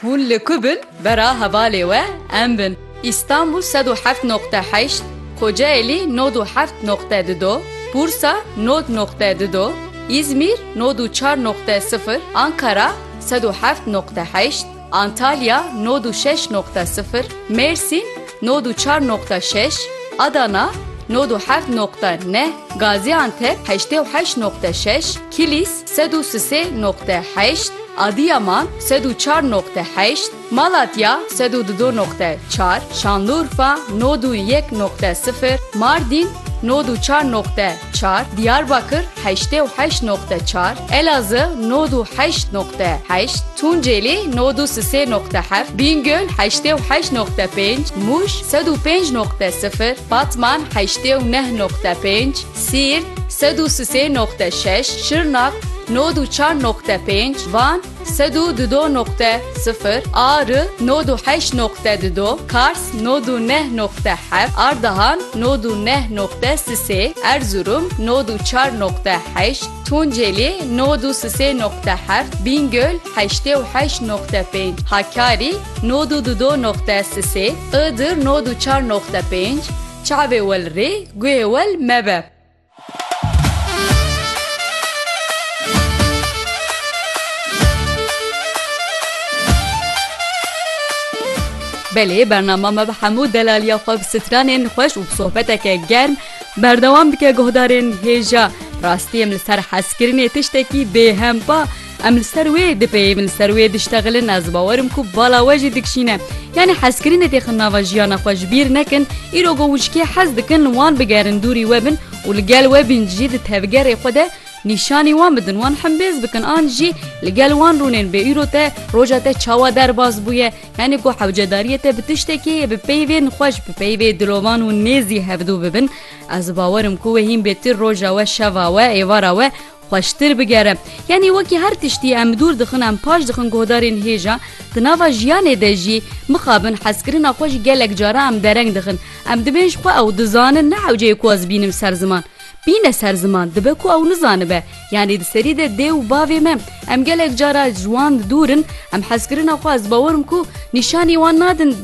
Hûn li ku bin bera hevalê we em bin. Îstanbûl sed û heft noqte heşt, Kocaelî nod û heft noqte di do, Bursa nod noqte di do, Îzmîr nod û çar noqte sifir, Ankara sed û heft noqte heşt, Antalya nod û şeş noqte sifir, Mêrsîn nod û çar noqte şeş, Adana nod û heft noqte neh, Gazîantep heştê û heşt noqte şeş, Kilîs Sed û sisê noqte heşt, Adiyaman, sed û çar noqte heşt, Malatya, sed û dido noqte çar, Şanlurfa, nod û yek noqte sifir, Mardîn, nod û çar noqte çar, Diyarbakir, heştê û heşt noqte çar, Elazığ, nod û heşt noqte heşt, Tunceli, nod û sisê noqte heft, Bîngöl, heştê û heşt noqte pênc, Mûş, sed û pênc noqte sifir, Batman, heştê û neh noqte pênc, Siirt, sed û sisê noqte şeş, Şirnak, nod û çar noqte pênc, Van, sed û dudo noqte sifir, Ari, nod û heşt noqte dudo, Kars, nod û neh noqte heft, Ardahan, nod û neh noqte sisê, Erzurum, nod û çar noqte heşt, Tunceli, nod û sisê noqte heft, Bîngöl, heştê û heşt noqte pênc, Hakkari, nod û dudo noqte sisê, Iğdır, nod û çar noqte pênc, Çavê wel rê, guhê wel mebe. Belê bernama me bi hemû delaliya xwe bi stranên xweş û bi sohbeteke germ berdewam dike guhdarên hêja. Rastî em li ser hezkirinê tiştekî bêhempa. Em li ser wê dipeyivin, li ser wê diştexilin, ez bawer im ku bala we jî dikşîne. Yanî hezkirinê têxin nava jiyana xwe ji bîr nekin, îro ku wişkê hez dikin wan bigerin dûrî we bin û li gel we bin jî di tevgerê xwe de nîşanî wan bidin, wan himbêz bikin an jî li gel wan rûnên bê îro te roja te çawa derbas bûye, yanî ku hewcedariyê te bi tiştekê yê bi peyvên xweş bi peyvê dilovan û nêzî hevdû bibin, ez bawer im ku wê hîn bê ti roja we, şeva we, êvara we, Xweştir bigere. Yanî wekî her tiştî em dûr dixin em paş dixin guhdarên hêja di nava jiyanê de jî mixabin hezkirina xwe jî gelek cara em dereng dixin. Em dibên ji xwe ew dizanin ne hewceyê ku ez bînim ser ziman. Bîne ser ziman dibe ku ew nizanibe. Yanî di serî de dê û bavê me em gelek cara ji wan dûr in em hezkirina xwe ez bawer im ku nîşanî wan nadin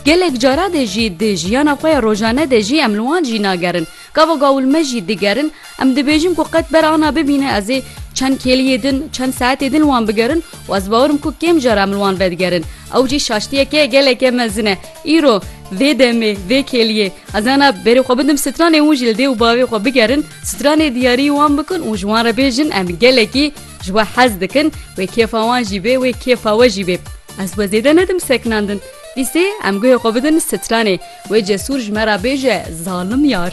gelek cara de jî di jiyana xwe ya rojane de jî em li wan jî nagerin. Gava gawil me jî digerin, em dibêjin ku qet ber ana bibîne ez ê çend kêliyê din, çend saetê din li wan bigerin û ez bawer im ku kêm jar em li wan vedigerin. Ew jî şaştiyeke geleke mezin e. Îro, vê demê, vê kêliyê ez ana berê xwe bidim stranê hûn jî li dê û bavê xwe bigerin, stranê diyarî wan bikin û ji wan re bêjin em gelekî ji we hez dikin, wê kêfa wan jî bê, wê kêfa we jî bê. Ez we zêde nedim sekinandin. Îsê em guhê xwe bidin stranê. Wê cesûr ji me re bêje zalim yar.